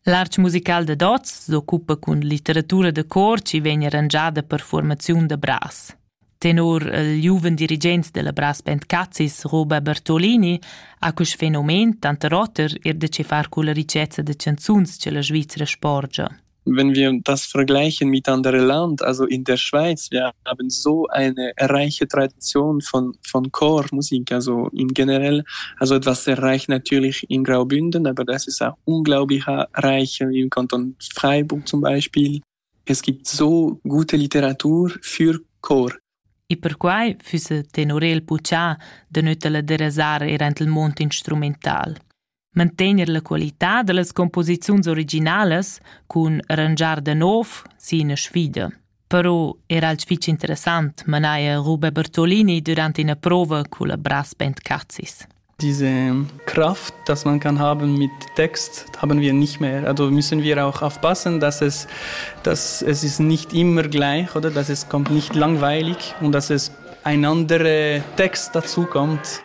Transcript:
L'artg musical da Dots s'occupa cun litteratura da cor chi vegn arrangiada per formaziun da bras. Tenor il giuven dirigent della Brass Band Cazis, Roba Bertolini, ha quest fenomen tanter oter er da che far culla ricezza da canzuns che la Svizzera sporgia. Wenn wir das vergleichen miteinander Land, also in der Schweiz, wir haben so eine reiche Tradition von, von Chormusik, also im generell, also etwas sehr reich natürlich in Graubünden, aber das ist auch unglaublich reich im Kanton Freiburg zum Beispiel. Es gibt so gute Literatur für Chor. E perquai füsse tenor el buca de nötala derasar er ent il mond instrumental. mantegner la qualità dallas composiziuns originalas cun arrangiar da nov sin sfida. Però era alch fich interessant manaja Rube Bertolini durant ina prova culla Brass Band Cazis. Diese Kraft, dass man kann haben mit Text, haben wir nicht mehr. Also müssen wir auch aufpassen, dass es, dass es ist nicht immer gleich oder dass es kommt nicht langweilig und dass es ein anderer Text dazu kommt.